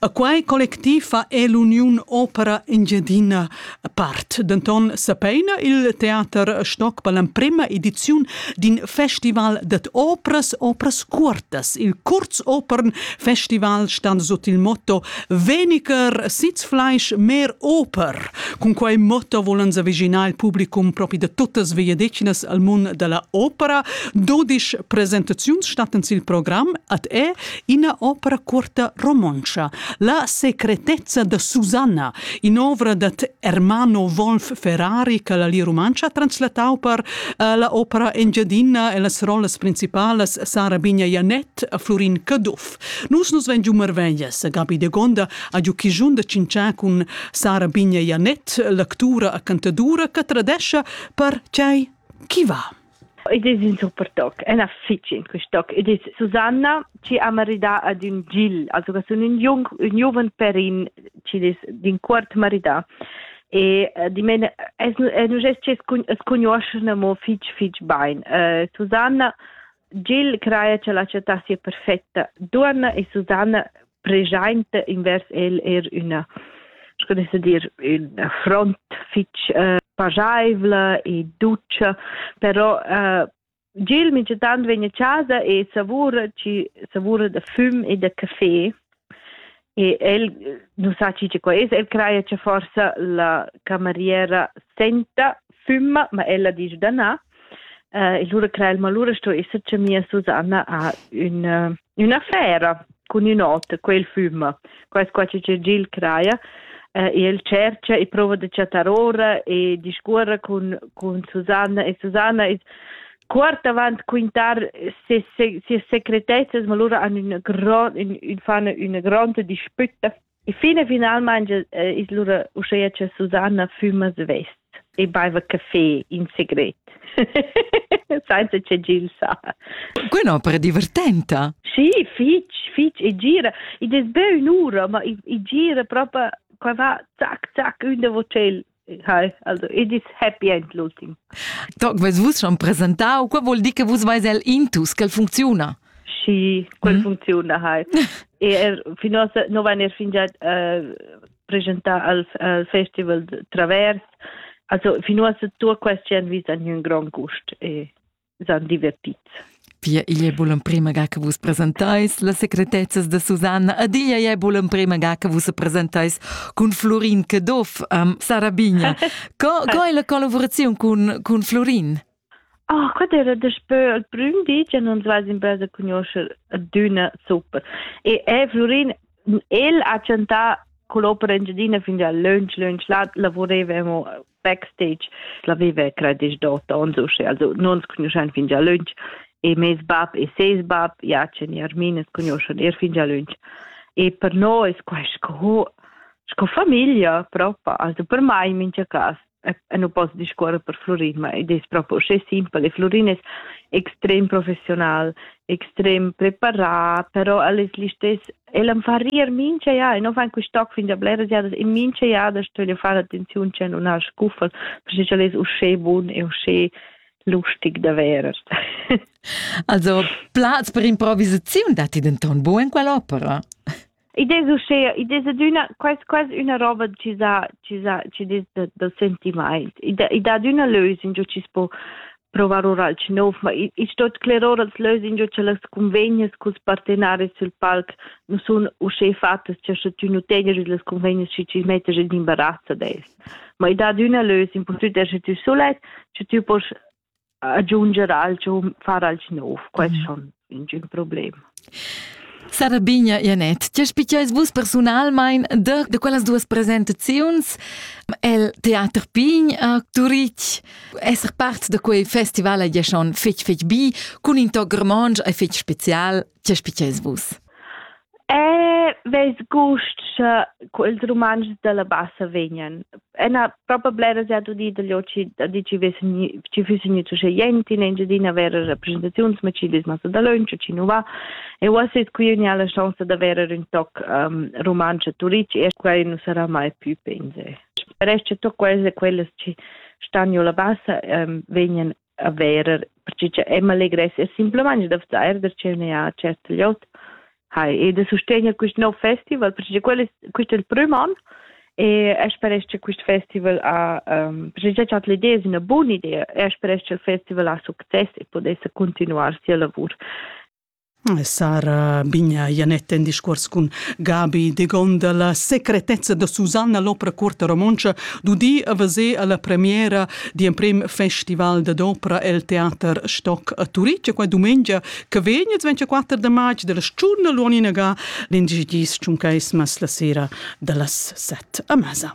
A quai collectiv fa è l'Uniun Opera Engiadina part. Denton sapeina il teater Stock per l'emprema ediziun d'in festival dat opras, opras curtas. Il Kurzopern Festival stan sut il motto Weniger Sitzfleisch, mehr Oper. Cun quei motto volan s'aviginar il publicum propi da tuttas vegliadetgnas al mund dalla opera. Dodisch presentaziuns stattan sil program ad è ina opera cuorta romontscha, La secretezza da Susanna, in'ovra dad Ermano Wolf Ferrari che la Lia Rumantscha ha translatau per eh, la opera Engiadina e las rollas principalas Sara Bigna Janet e Florin Caduff. Nus nus vegn giu marveglias. Gabi de Gonda ha giu chigiun da cinciar cun Sara Bigna Janet, l'actura e cantadura che tradescha per tgei chi va. Id es ün super toc, ena fich in quist toc. Id es Susanna chi ha maridà ad ün Gil, also che sun ün jung, ün giuven perin chi es d'in quart maridà. E uh, di men, es, es nu gest chi es cugnuoschene mo fich fich bain. Uh, Susanna, Gil craja che la città sia perfetta. Duonna e Susanna preschainta invers el er üna sco ne sa dir ün front fich uh, pajaivla e dutscha però uh, Gil migitant vegn a casa e savura ci savura da füm e da caffè e el non sa ci co es el craia che forsa la cameriera senta fümma ma ella dice da na uh, e lura crea il malura sto esser che mia Susanna ha un uh, Üna fera cun ün ot, quel füma. Quais qua chi Gil craja. Eh, e el cercha e prova da chattar ora e discuorra cun, cun Susanna e Susanna es quart avant quintar ses, ses secretezzas, ma lura han ün grand, ün, ün fan üna gronda dispütta E fin e finalmain es lura uschea cha Susanna füma svest e baiva caffè in segret. Sainza che Gil sa. Quella opera divertenta. Sì, fitch, fitch e gira. Id es be ün'ura, ma i gira propa qua va zac, zac ün da vocel Hi, also it is happy and looting. Toc, vus vus schon presentau, quei vuol dir che vus veis el intus, quel funcziuna. Sì, quel mm. funziona, hi. e er, fino a non van er fingià uh, presentar al, al festival Travers, also fino a tu quest jan vis a un gran gust e s'han divertits. Pia igl è bun l'emprima ga che vus presentais las secretezzas da Susanna ed igl è bun l'emprima ga che vus presentais cun Florin Caduff um, Sara Bigna. Co, co è la collaborazione cun, cun Florin? Ah, oh, quella era daspö il prüm di che non vas in basa conoscer d'una super. E è Florin, el ha chantà con l'opera Engiadina fin da lunch lunch, là lavorevamo backstage l'aveva credisch dot ons usche also non conoscen fin già lunch e mes bab e ses bab Jachen e Armin es conoscen er fin già lunch e per noi es quai sco sco famiglia propa also per mai in mincha cas e non posso discorrere per Florin ma ed è proprio usche simpel e Florin è extrem professional extrem preparat però el es listess El am fa rir mincha jada, e no fan quist toc fin da bleras jadas, e mincha jada stögl far attenziun che nun ha scuffel, perché ch'el es uschè bun e uschè lustig da verer. also, plaz per improvisaziun datti denton buc in quell'opera? Id es uschè, id es adüna quasi quasi üna roba chi sa chi sa chi des da, da sentimaint. I dà, i dà üna lösung giò chi's po provar ora alch nov, ma i, i sto sclerar als lös ingio cha las convegnas culs partenaris sul palc nu sun uschè fattas cha sche tü nu tegner üs las convegnas schi chi mettas in imbarazz ad els. Ma i dat üna lös, impurtant esser tü sulet, sche tü poss aggiunger alch o far alch nov, quest mhm. schon. ingün problem. Sara Bigna Ianet, tge spiceis vus personalmein de, de quellas duas presentaziuns el Theater Pign a Turitg, esser part de quei festival a schon fetg fetg bi, cun in toc romontsch e fetg special, tge spiceis vus? Eh, vess gust sche quels Rumantschs dalla bassa vegnan. Ena propa blera se ha udì dagli oci da di ci vessen ci füssen gnü zusche jent in Engiadina vera rappresentaziuns, ma ci vis massa dalöntsch e ci nu va. E uossa es qui ün la chance da verer ün toc um, rumantsch a Turic e quai nu sarà mai più pense. Resta toc quels e quellas ci stan giù la bassa um, vegnan a verer, perché cha Emma legressia simpelmaing da vzair da ch'eu ne ha cert gliot. Hai, e da sustegner quist nov festival, perché quel es quist è il prüm an e e speresch che quist festival ha um, perché già chat l'idea è una buona idea e speresch che il festival ha succes e potesse continuar sia lavur. Sara Bigna Janett en discuors cun Gabi Degonda. La secretezza da Susanna l'opera cuorta romontscha d'udir a veser alla premiera d'emprem festival da d'opera el Teater Stock a Turitg. Qua dumengia che vegn il 24 de marz della sciurna Luanina ga l'indicis tschuncaismas la sera dallas set a masa.